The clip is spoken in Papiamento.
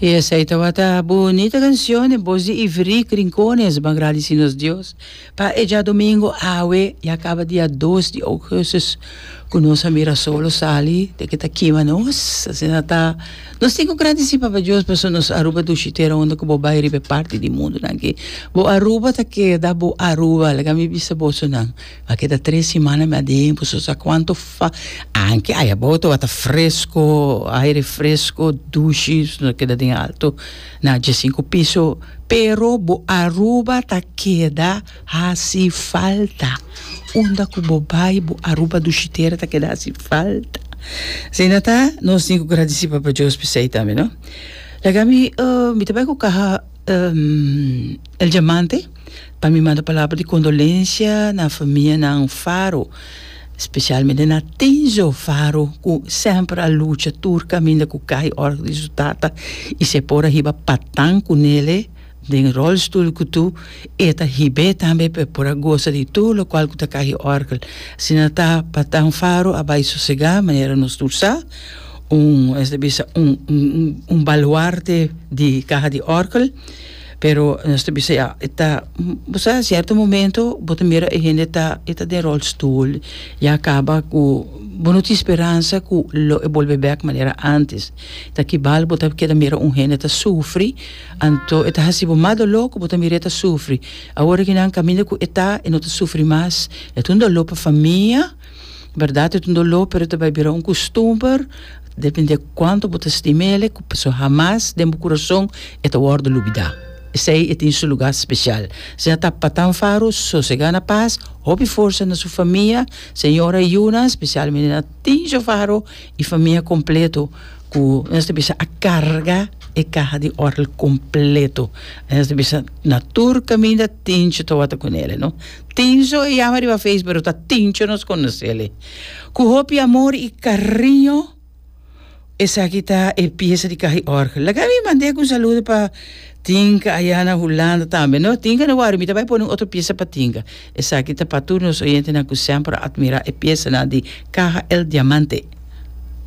Y esey tabata bunita canción e bos di Iverick Rincones. Ban gradeci nos Dios pa e djadomingo awe ya caba dia dos di augustus cu nos a mira solo sali di cu ta kima nos. Asina ta. Nos tin cu gradeci Papa Dios pasobra nos Aruba dushi tera unda cu bo bay riba e parti di mundonan aki. Bo Aruba ta keda bo Aruba, laga mi bisa bosonan. A keda tres simana mi a den boso sa kuantu fa anke ai abou tabata fresko aire fresko dushi no a keda den alto na dje sinku piso pero bo Aruba ta keda hasi falta unda ku bo bai bo Aruba dushitera ta keda hasi falta asina ta nos tin ku gradisi Papa Dios p'esei tambe no laga mi mi ta bai ku kaha el diamante. Pa mi manda palabra di condolencia na famianan Faro, specialmente na Tinzo Faro cu semper a lucha tur caminda cu cay ora di su tata y si e por a hiba patan cu nele den rolstoel cu tu e ta hib'e tambe pa e por a gosa di tur locual cu ta cahi orgel. Asina ta patan Faro a bay sosega manera nos tur sa un esaki ta bisa un baluarte di caha di orgel. Pero nos ta bisa ya e ta bo sa sierto momento bo ta mira e hende ta e ta den rolstoel ya kaba ku bo no tin speransa ku lo e bolbe bek manera antes ta ki bal bo ta keda mira un hende ta sufri anto e ta hasi bo mas dolo ku bo ta mira e ta sufri awor e kinan kaminda ku e ta e no ta sufri mas e ta un dolo pa famia Berdad e ta un doló pero ta bai bira un kustumber depende kuantu bo ta stima el so hamas den bo kurason e ta wòrdu lubidá. Esei e tin su lugá spesial. Si a ta Patan Faru sosegá na pas, hopi forsa na su famia, señora i yunan, spesialmente na Tinjo Faru i famia kompletu ku nos ta bisa a karga e kaha di òrgel kompletu. Nos ta bisa na tur kaminda Tinjo tawata ku nele no. Tinso e yama riba face pero ta Tincho nos konosel e ku hopi amor i kariño esaki ta e piesa di kaha i orgel laga mi manda ek un saludo pa Tinka aya na Hulanda tambe no Tinka no wari mi ta bai pone un otro piesa pa Tinka esaki ta pa tur nos oyentenan ku semper a atmira e piesanan di kaha el diamante.